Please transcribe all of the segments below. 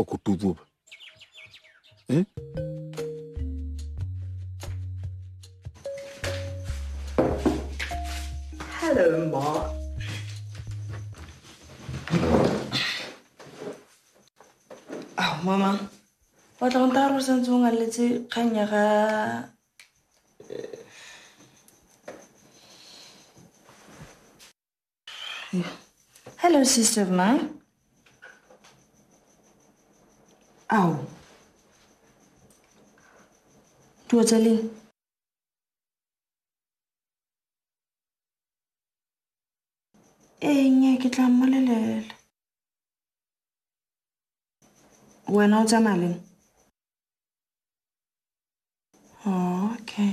ọkụ tupu eh? Hello, Mark. Oh, Mama. Ba tla go nta gore santse o ngaletse kgang ya ga Hello, sister of mine. Ao. Tua tsa leng? Ee, nnyaa, ke tla mmolelela. Wena o tsamaya leng? Oh, okay.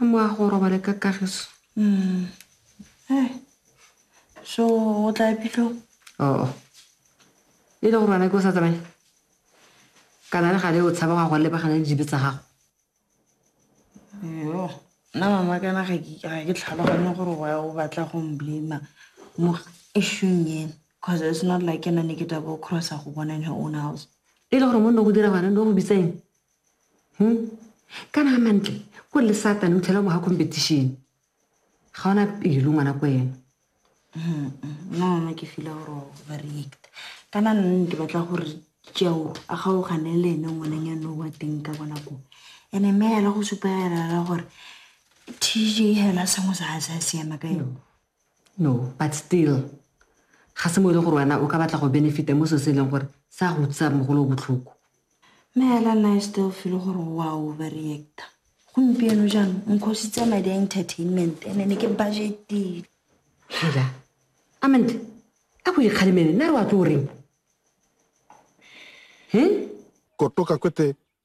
a mo a go robale ka kagiso mm. eh. so o tla epitlo oo oh. e le gore ana ke o sa tsamaye kana le gale o tshaba ga go lebagana le dibe tsa gago yo nna mama kana ga ke tlhaloganye gore wa o batla go mblama mo eshung ena because it's not like ena ne ke tabo crossa go bona in her own house e le gore mo nne go dira gone no go bitseng hmm? kana ga mantle ko le satane o tlhela mo ga competition ga ona pelo ngwana ko ena nona ke fila gore overreact kana nne ke batla gore jao a gaogane le ene ngwaneng ya no wa teng ka bona ko ene mme ela go supa elela gore tj hela sengwe sa ga se a siama ka yone No, but still ga se mo e le gore wena o ka batla go benefita mo so se e leng gore se a go utlwisa mogolo o botlhoko mme hela nna e still feel gore wa overreacta gompieno jaanong nkhositse madi a entertainment ene ne ke budgetile hela amante a go ikgalemele nna re wa tlo o reng he kotoka kwete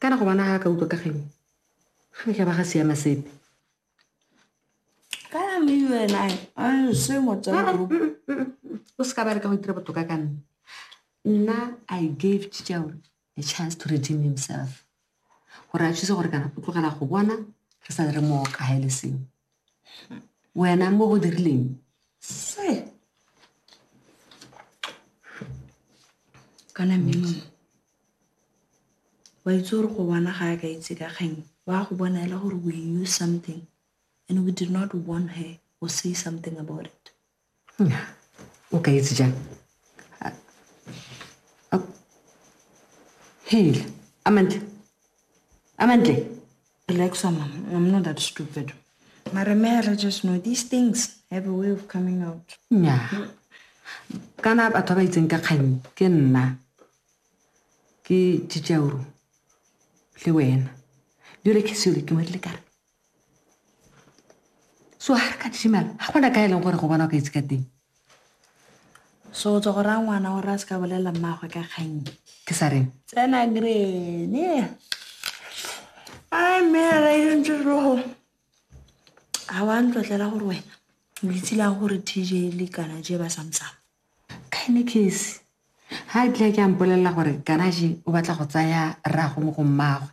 Kana go bona ga ka utlwa ka kgang e? Ga ne ka ba ga siama sepe. Kana me you and I, I se motsana group. O se ka ba re ka go itira botoka ka nna. Nna I gave Chichao a chance to redeem himself. Gore a thuse gore kana o tlogela go bona re sa le re mo kaga e le sengwe. wena mo o dirileng se kana mmeno wa itse gore go bona ga a ka itse ka kgang wa go bona ele gore we knew something and we did not warn her or say something about it o ka itse jang heile amantle amantle relax mama i'm not that stupid mara may i just know these things have a way of coming out nya kana batho ba ba itseng ka kgang ke nna ke tšitšauro le wena jole ke sele ke ngwadile kare so ga re ka disimala ga gona ka e leng gore go bona o ka itse ka teng so o tswa go raya ngwana gore a se ka bolelela mmaagwe ka kgang ke sa reng tsena grene a mme a raentse rogo ga wa ntlotlela gore wena o itse lang gore tj le kana je ba samsang Kainikesi, ha a tlile a ke a mpolelela gore Kanaji o batla go tsaya rrago mo go mmagwe.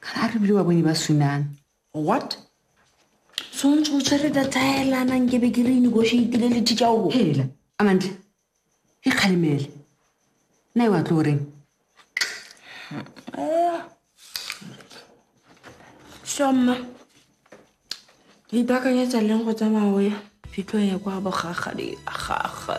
Kana a re bile wa bone ba sunana. What? So ntse o tshwere data ya elana nke be ke re negotiatile le teacher o. Hela, Amantle. E kgalemele. Nna e wa tlo reng? Shoma. Ke ipakanyetsa leng go tsamaya o ya phitlho ya kwa bogagadi gagwe.